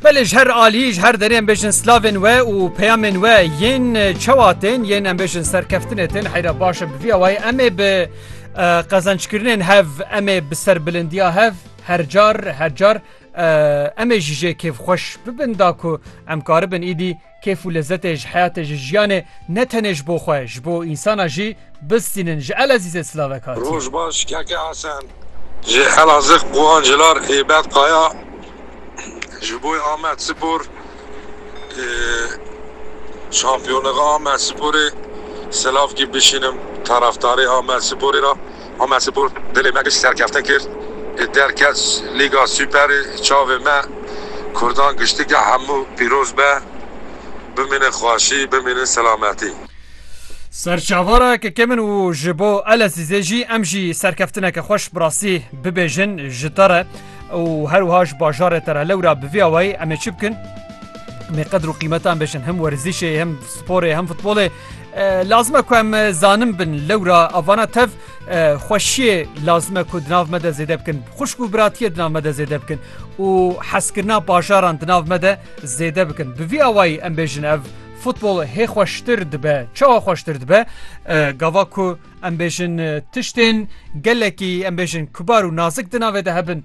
Belê ji her alî ji her derê em bêjin slavên we û peyamên we yên çewa tên yên em bêjin serkeftinê tên heyra baş e bi vî awayê em ê bi qezançkirinên hev em ê bi serbilindiya hev her car her car em ê jî jê kêfxweş bibin da ku em karibin îdî Kêf û lezetê ji heyatê ji jiyanê ne tenê ji bo xwe ji bo însana jî bistînin ji Elezîzê silavek hatiye. Roj baş keke Hesen ji Elazig Guhan Cilar ê Bed Kaya ji boy Amed Spor ê Şampiyoniga Amed Sporê silavkî bişînim taraftarê Amed Sporê ra. Omer Spor dilê me giş serkeftin kir, derket Lîga Superê çavê me, Kurdan giştîgeh hemû pîroz be, bimînin xweşî, bimînin selametî. Serçavara kekê min û ji bo Elezîzê jî em jî serkeftineke xweş bi rastî bibêjin ji te re û her wiha ji bajarê te re. Lewra bi vî awayî em ê çi bikin? Em ê qedir û qîmeta em bêjin, him werzîşê, him sporê, him futbolê. Lazime ku em zanim bin lewra avana tev xweşiyê lazime ku dinav me de zêde bikin xuşk û biratiye dinav me de zêde bikin û heskirina bajaran dinav me de zêde bikin bi vî awayî em bêjin ev futbol hê xweştir dibe çawa xweştir dibe gava ku em bêjin tiştên gelekî em bêjin kubar û nazik dinavê de hebin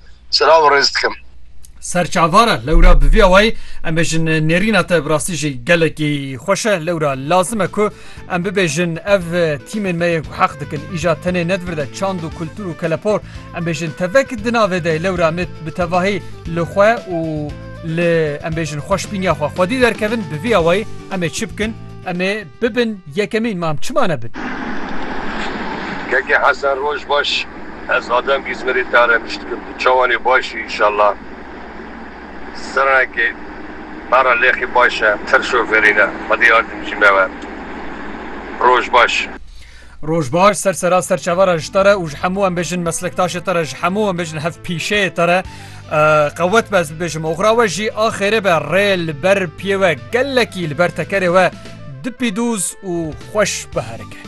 Selav û rêz dikim. Serçavar e lewra bi vî awayî em bêjin nêrîna te bi rastî jî gelekî xweş e lewra lazim e ku em bibêjin ev tîmên me yên ku heq dikin îja tenê ne di vir de çand û kultur û kelepor em bêjin tevek di navê de lewra em ê bi tevahî li xwe û li em bêjin xweşbîniya xwe xwedî derkevin bi vî awayî em ê çi bikin em ê Bibin yekemîn mam çima nebin. Keke Hesen roj baş ez Adem Îzmirê te re biştikim tu çawan ê baş î inşallah sirenkê me re lêxî baş e tir şofêrî ne xwedî yardimcî me we roj baş. Roj baş ser sera serçava re ji te re û ji hemû em bêjin meslektaşê te re ji hemû em bêjin hev pîşeyê te re qewet be ez bibêjim oxra we jî a xêrê be rê li ber piyê we gelekî li ber tekerê we dipî dûz û xweş biherike.